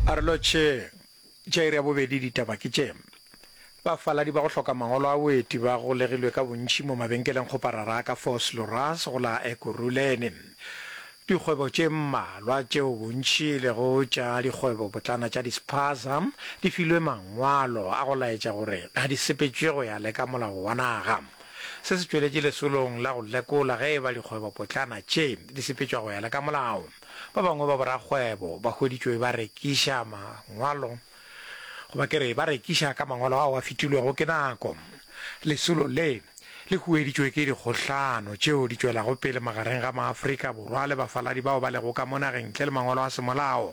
A re lotšheng, tša iri ya bobedi ditaba ke tše, Bafaladi ba go hloka mangolo a boeti ba golegilwe ka bontši mo mabenkeleng kgoparara a ka Vosloorus go la Ekurhuleni. Dikgwebo tše mmalwa tšeo bontši e lego tša dikgwebopotlana tša dispaza di filwe mangwalo a go laetša gore ga di sepetšwe go ya le ka molao wa naga. Se se tšweletše lesolong la go lekola ge e ba dikgwebopotlana tše di sepetšwa go ya le ka molao. Ba bangwe ba borakgwebo ba hweditšwe ba rekiša mangwalo, goba ke re ba rekiša ka mangwalo ao a fetilwego ke nako. Lesolo le le hueditšwe ke dikgohlano tšeo di tšwelago pele magareng ga maAfrika Borwa le bafaladi bao ba lego ka mo nageng ntle le mangwalo a semolao.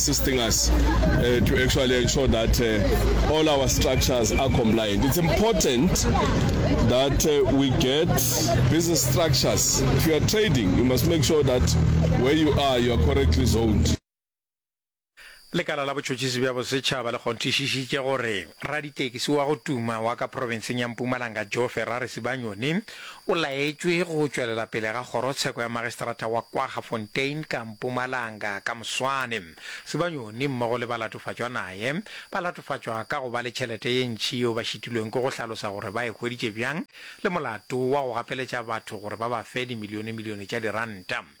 assisting us to actually ensure that all our structures are compliant. It's important that we get business structures. If you are trading, you must make sure that where you are, you are correctly zoned. Lekala la Botšhotšhisi bja Bosetšhaba le kgonthišišitše gore raditekisi wa go tuma wa ka profenseng ya Mpumalanga Joe Ferrari Sibanyoni O laetšwe go tšwelela pele ga kgorotsheko ya Magistrata wa Kwaggafontein ka Mpumalanga ka moswane. Sibanyoni mmogo le balatofatšwa naye ba latofatšwa ka go ba le tšhelete ye ntši yeo ba šitilweng ke go hlalosa gore ba e hweditše bjang le molato wa go gapeletša batho gore ba ba fe dimilionemilione tša diranta.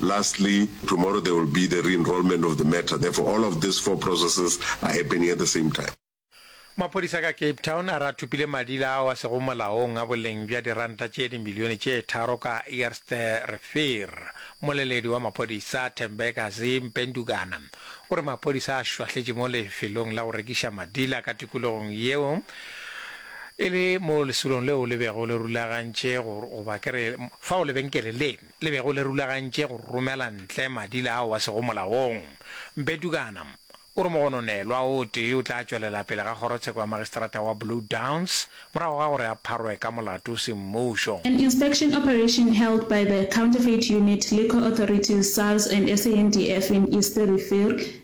Lastly, tomorrow there will be the re-enrolment of the matter, therefore all of these four processes are happening at the same time. Maphodisa ka Cape Town a re a thopile madila ao a sego molaong a boleng bja diranta tše dimilione tše tharo ka Eerste Rivier. Mmoleledi wa maphodisa, Thembekazi Mpendukana, o re maphodisa a šwahletše mo lefelong la go rekiša madila ka tikologong yeo e le moo lesolong leo le bego le rulagantše goba ke re fao lebenkele le le bego le rulagantše go romela ntle madila ao a sego molaong. Mpe Tukana o re mogononelwa o tee o tla tšwelela pele ga kgorotsheko ya magistrata wa Blue Downs morago ga gore a pharwe ka molato o se mmušo. An inspection operation held by the Counterfeit Unit, Liquor Authorities, SARS and SANDF in Eerste Rivier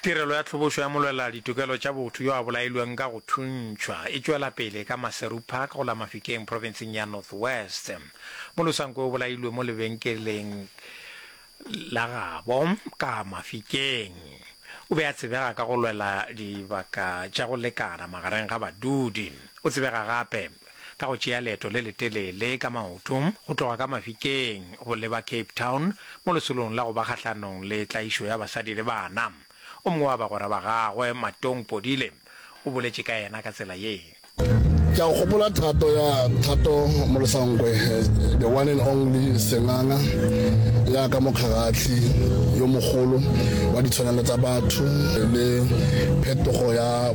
Tirelo ya Tlhobošo ya Molwelela Ditokelo tša Botho yo a bolailweng ka go thuntšhwa e tšwela pele ka Maseru Park go la Mafikeng profenseng ya North West. Molosanko o bolailwe mo lebenkeleng la gabo ka Mafikeng. O be a tsebega ka go lwela dibaka tša go lekana magareng ga badudi. O tsebega gape ka go tšea leeto le letelele ka maoto go tloga ka Mafikeng go leba Cape Town mo lesolong la go ba kgahlanong le tlaišo ya basadi le bana. O mongwe wa bagwera ba gagwe, Matong Podile, o boletše ka yena ka tsela ye. Ke a gopola thato ya Thato Molosankwe, the one and only senganga, ya ka mokgagathli yo mogolo wa ditshwanelo tsa batho le phetogo ya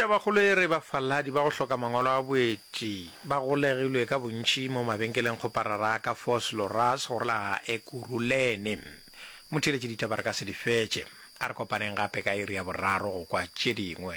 Tabakgolo e re bafaladi ba go hloka mangwalo a boeti ba golegilwe ka bontši mo mabenkelengkgoparara a ka Vosloorus go la Ekurhuleni. Motheeletši ditaba re ka se di fetše. A re kopaneng gape ka iri ya boraro go kwa tše dingwe.